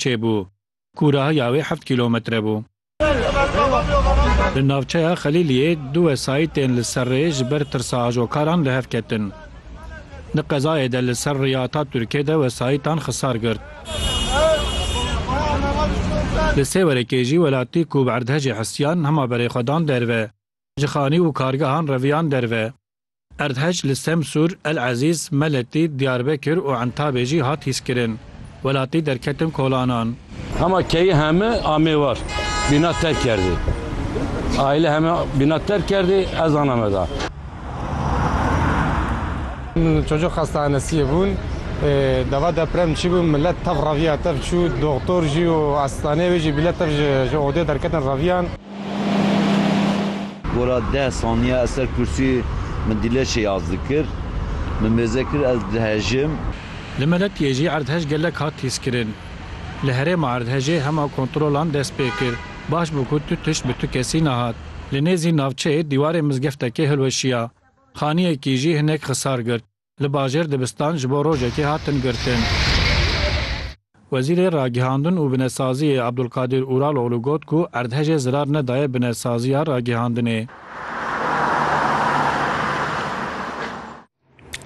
çêbû. Kûrahiya wê heft kîlometre bû. Di navçeya Xelîliyê du wesayîtên li ser rê ji ber tirsa ajokaran li hev ketin. Di qezayê de li ser rêya Atatürkê de wesayîtan xisar girt. Li Sêwerekê jî welatî ku bi erdhejê hesiyan hema berê xwe dan derve. Ji xanî û kargehan reviyan derve. Erdhej li Semsûr, El Ezîz, Meletî, Diyarbekir û Entabê jî hat hîskirin. Welatî derketin kolanan. Hema keyî heme amê war bîna terk kerdî. Aîle heme bîna terk kerdî, ez ana me da. Çocuk xastahanesiyê bûn. Deva deprem çîbû milet tev reviya tev çû. Doxtor jî û asistanê wê jî bîle tev ji odê derketin reviyan. Gora deh saniye ez ser kursî min dîleşê yaz dikir. Min mêze kir ez dihejim. Li Meletiyê jî erdhej gelek hat hîskirin. Li herêma erdhejê hema kontrolan dest pê kir. Baş bû ku tu tişt bi tu kesî nehat. Li nêzî navçeyê dîwarê mizgeftekê hilweşiya. Xaniyekî jî hinek xisar girt. Li bajêr dibistan ji bo rojekê hatin girtin. Wezîrê Ragihandin û Binesaziyê Abdulkadîr Uraloglu got ku erdhejê zirar nedaye binesaziya ragihandinê.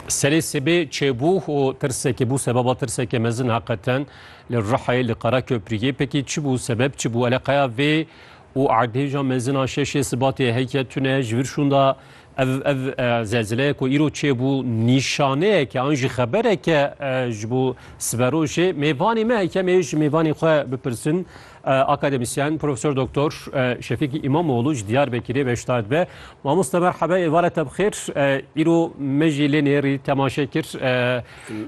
Serê sibê çêbû û tirsekê bû sebeba tirsekê mezin heqeten li Rihayê li Qereköpriyê pekî çi bû sebeb çi bû eleqeya vê û erdhêja mezin a şeşê sibatê heke tune ji vir şûnda Ev ev zelzileye ku îro çêbû nîşaneyeke an jî xebereke ji bo siberojê mêvanê me heke em ê ji mêvanê xwe bipirsin akademisyen Profesor Doktor Şefîkî İmamoğlu ji Diyarbekirê beşdar dibe. Mamoste merhebe êvare te bixêr îro me jî lê nêrî temaşe kir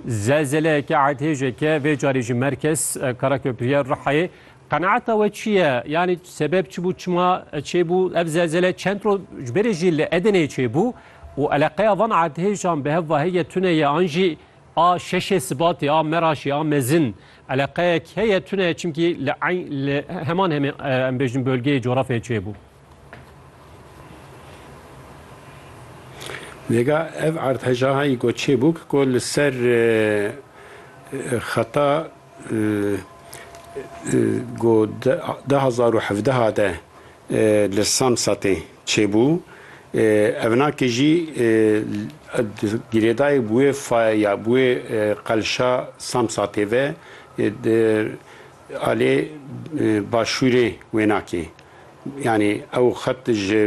zelzeleyeke erdhêjeke vê carê ji merkez Karaköprîya Rihayê Qenaeta we çi ye? Yanî sebeb çi bû, çima çêbû ev zelzele? Çend roj ji berê jî li Edeneyê çêbû û eleqeya van erdhêjan bi hev ve heye tune ye an jî a şeşê Sibatê, a Meraşê, a mezin eleqeyek heye tune ye çimkî li eyn li heman hemê em bêjin bölgeyê coğrafyayê çêbû. Nêga ev erdhejaha yî ku çêbûk ku li ser xeta Ku du hezar û hevdeh de li Samsatê çêbû, evnakê jî girêdayî bi wê faya ya bi wê qelşa Samsatê ve di alê başûrê wênakê Yanî ew xet ji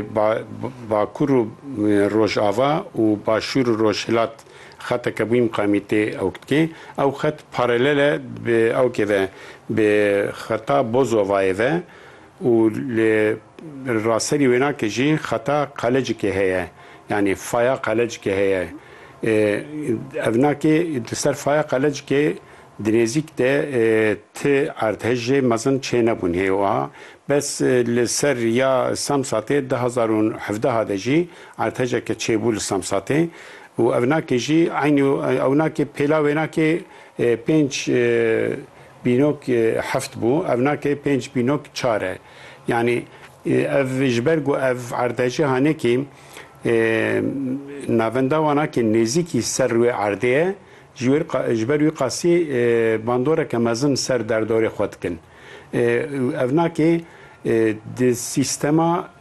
bakur û rojava û başûr û rojhilat xeteke wî miqamî tê ewk dike. Ew xet paralel e bi ewkê ve bi xeta Bozovayê ve û li raserî wênakê jî xeta Qalecikê heye. Yanî faya Qalecikê heye. Ev nakê di ser faya Qalecikê Dirêzîk de ti erdhejê mezin çênebûn hê wiha bes li ser ya Samsatê du hezar û hevdeh de jî erdhejeke çêbû li Samsatê û ewnakê jî eynî ewnakê pêla wênakê pênc bînok heft bû ewnakê pênc bînok çar e yanî ev ji ber ku ev erdhejê hanekî navenda wanakê nêzîkî ser wê erdê ye Ji wê re ji ber wî qasî bandoreke mezin li ser derdorê xwe dikin. Ev nake di sîstema